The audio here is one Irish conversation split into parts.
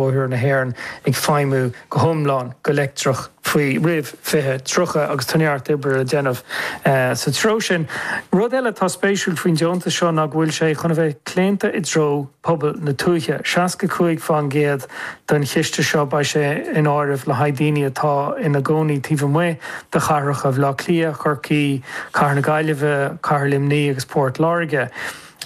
Bóithre na hÉireann ag feidhmiú go hiomlán go leictreach faoi, roimh 2030 agus tá neart oibre le déanamh sa treo sin. Rud eile atá spéisiúil faoin deontas seo ná go bhfuil sé chun a bheith claonta i dtreo pobail na tuaithe. 65 faoin gcéad den chiste seo, beidh sé in áireamh le haghaidh daoine atá ina gcónaí taobh amuigh de chathracha Bhaile Átha Cliath, Corcaigh, Cathair na Gaillimhe, Cathair Luimní agus Port Láirge.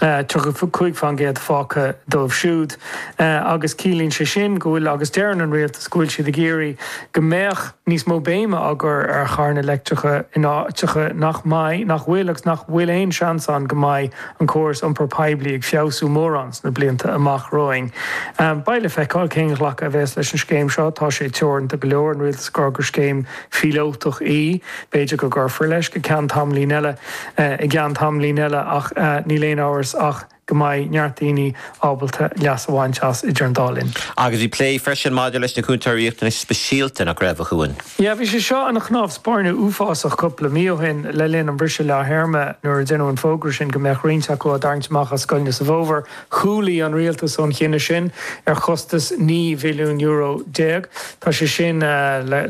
35 faoin gcéad fágtha dóibh siúd agus ciallaíonn sé sin go bhfuil agus deireann an rialtas go bhfuil siad ag iarraidh go mbeadh níos mó béime á cur ar charranna leictreacha in áiteacha nach mbeidh, nach bhfuil agus nach bhfuil aon seans ann go mbeidh an córas iompar poiblí ag feabhsú mórán sna blianta amach romhainn. Beidh le feiceáil cén ghlacadh a bheas leis an scéim seo, tá sé teoranta go leor, an rialtas ag rá gur scéim phíolótach í. B'fhéidir go gcuirfear leis go ceann tamaillín eile, i gceann tamaillín eile ach níl aon amhras ach go mbeidh neart daoine ábalta leas a bhaint as idir an dá linn. Agus bhí plé freisin maidir leis na Cúntóirí Riachtanais Speisialta, nach raibh, a Chuain? Yeah, bhí sé seo ina chnámh spairne uafásach cúpla mí ó shin le linn an bhriseadh leath-théarma nuair a deineadh an fógra sin go mbeadh roinnt acu á dtarraingt amach as scoileanna sa bhfómhar Chúlaigh an rialtas ón chinneadh sin ar chostas naoi mhilliún euro déag. Tá sé sin le,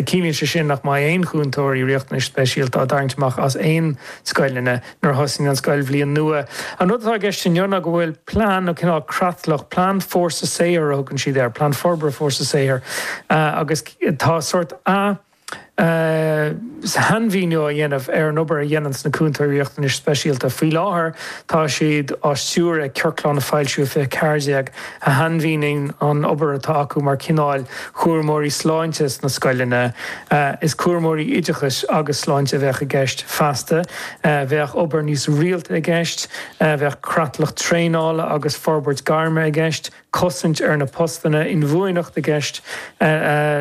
ciallaíonn sé sin nach mbeidh aon chúntóirí riachtanais speisialta á dtarraingt amach as aon scoileanna nuair a thosaíonn an scoilbhliain nua. An rud atá i gceist inniu ná go bhfuil plean nó cineál creatlach, plean fórsa saothair a thugann siad air, plean forbartha fórsa saothair, agus tá sórt, Sainmhíniú á dhéanamh ar an obair a dhéanann na cúntóirí riachtanais speisialta. Faoi láthair, tá siad á stiúradh ag ciorclán a foilsíodh 2014, a shainmhíníonn an obair atá acu mar chineál cúramóirí sláinte sna scoileanna. Is cúramóirí oideachais agus sláinte a bheadh i gceist, feasta. Bheadh obair níos rialta i gceist. Bheadh creatlach traenála agus forbairt gairme i gceist. cosaint ar na postanna, inbhuanaitheacht i gceist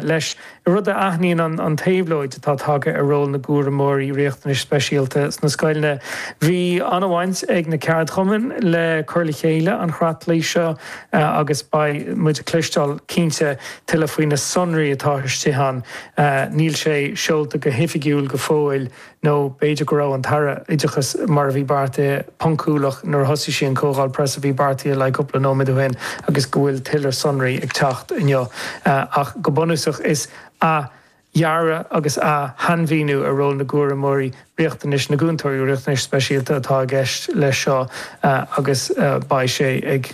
leis, rud a aithníonn an éabhlóid atá tagtha ar ról na gcúramóirí riachtanais speisialta sna scoileanna. Bhí an-bhaint ag na ceardchumainn le cur le chéile an chreatlaigh seo agus beidh muid ag cloisteáil cinnte tuilleadh faoi na sonraí atá istigh ann. Níl sé seolta go hoifigiúil go fóill. Nó b'fhéidir go raibh an tAire Oideachais, mar a bhí beartaithe, poncúlach nuair a thosaigh sí an chomhdháil preasa a bhí beartaithe le haghaidh cúpla nóiméad ó shin agus go bhfuil tuilleadh sonraí ag teacht inniu. Ach go bunúsach is athdhearadh agus athshainmhíniú ar ról na gcúramóirí, riachtanais na gcúntóirí riachtanais speisialta atá i gceist leis seo agus beidh sé ag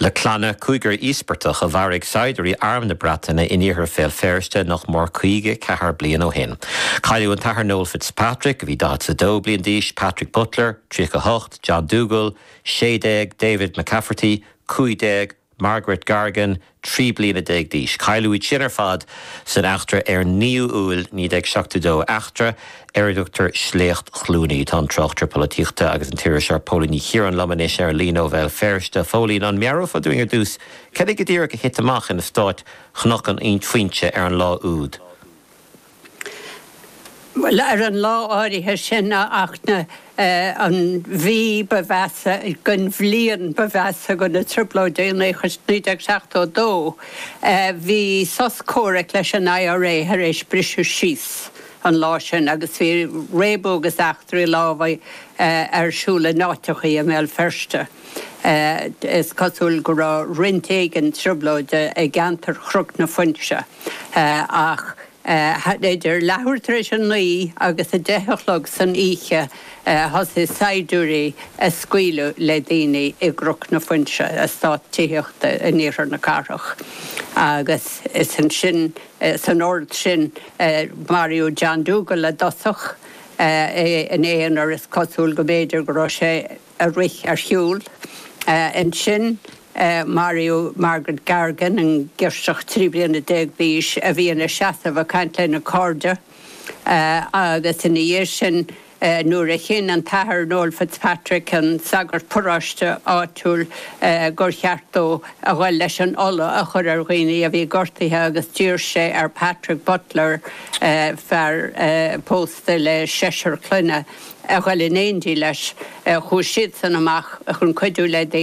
Le clanna cúigear íospartach a mharaigh saighdiúirí Arm na Breataine in iarthar Bhéal Feirste nach mór 54 bliain ó shin. Cailleadh an tAthair Noel Fitzpatrick, a bhí 42 bliain d'aois, Patrick Butler, 38, John Dougal, 16, David McCafferty, 15, Margaret Gargan, 13 bliana d'aois. Cailleadh iad sin ar fad san eachtra ar 9ú Iúil 1972, eachtra ar a dtugtar Sléacht Chluanaí. Tá an tráchtaire polaitíochta agus an t-iriseoir Póilín Ní Chiaráin liom anois ar an líne ó Bhéal Feirste. Phóilín, an meabhrófá dúinn ar dtús cad é go díreach a thit amach in eastát Chnoc na Foinse ar an lá úd? Bhuel, ar an lá áirithe sin, a Fhachtna, an mhí ba mheasa den bhliain ba mheasa de na Trioblóidí 1972, bhí sos comhraic leis an IRA tar éis briseadh síos. an lá sin agus bhí réabadh agus eachtraí lámhaigh ar siúl in áiteachaí i mBéal Feirste. Is cosúil go raibh roinnt éigin trioblóide i gceantar Chnoc na Foinse ach idir leathuair tar éis a naoi agus a deich a chlog san oíche thosaigh saighdiúirí ag scaoileadh le daoine i gCnoc na Foinse, eastát tithíochta in iarthar na cathrach, agus is ansin. San ord sin, maraíodh John Dougal i dtosach, é ina aonar, is cosúil go mb'fhéidir go raibh sé ag rith ar shiúl. Ansin maraíodh Margaret Gargan, an ghirseach trí bliana déag d'aois a bhí ina seasamh ag caint lena cairde, agus ina dhiaidh sin, nuair a chinn an tAthair Noel Fitzpatrick, an sagart paráiste áitiúil, gur cheart dó a dhul leis an ola a chur ar dhaoine a bhí gortaithe agus d'iarr sé ar Patrick Butler, fear pósta le seisear clainne, a dhul in éindí leis. Chuaigh siadsan amach chun cuidiú le daoine.